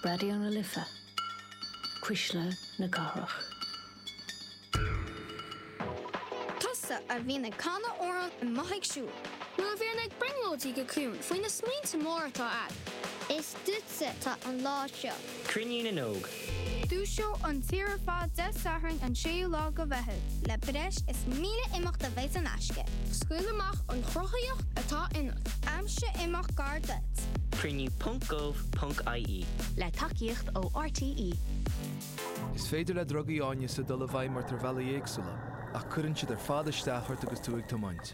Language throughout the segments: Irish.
Raidió na Life, Cuisle na Cathrach. Tusa a bhíonn ag canadh agus a mbíonn tú ag siúl. nó a bhíonn ag brionglóidí go ciúin faoi na smaointe móra atá a'd. Is duitse atá an lá seo. Cruinniú na nÓg. Dúiseoidh an tír ar fad Dé Sathairn an 6ú lá de Mheitheamh le breis is 1,000 imeacht a bheidh in aisce. Scaoil amach an chruthaíocht atá ionat. Aimsigh imeacht gar duit. Cruinniú ponc gov ponc ie. Le tacaíocht ó RTÉ. Is féidir le drugaí áineasa dul i bhfeidhm ort ar bhealaí éagsúla, ach cuireann siad ar fad isteach ort agus tú ag tiomáint.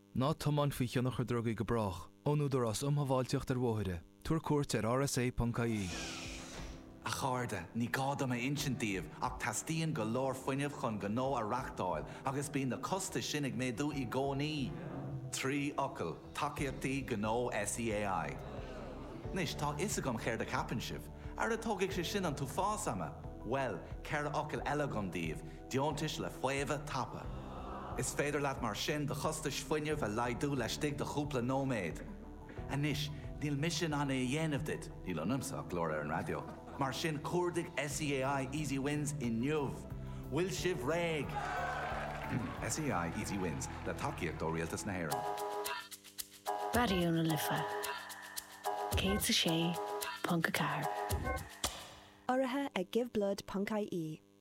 Ná tiomáin faoi thionchar drugaí go brách, ón Údarás um Shábháilteacht ar Bhóithre, tabhair cuairt ar rsa.ie. A chairde, ní gá dom a insint daoibh ach teastaíonn go leor fuinnimh chun gnó a reáchtáil agus bíonn na costais sin ag méadú i gcónaí! Trí fhocal, Tacaíochtaí Gnó SEAI. Anois, tá a fhios agam céard a cheapann sibh. Ara tógfaidh sé sin an t-uafás ama! Bhuel, ceithre fhocal eile agam daoibh, Deontais le faomhadh tapa. Is féidir leat mar sin do chostais fuinnimh a laghdú laistigh de chúpla nóiméad. Anois, níl mise in ann é a dhéanamh duit, níl ionamsa ach glór ar an raidió, mar sin cuardaigh SEAI Easy Wins inniu! Bhfuil sibh réidh? SEAI Easy Wins, le tacaíocht ó Rialtas na hÉireann. Raidió na Life 106.4. Urraithe ag Give Blood ponc-IE.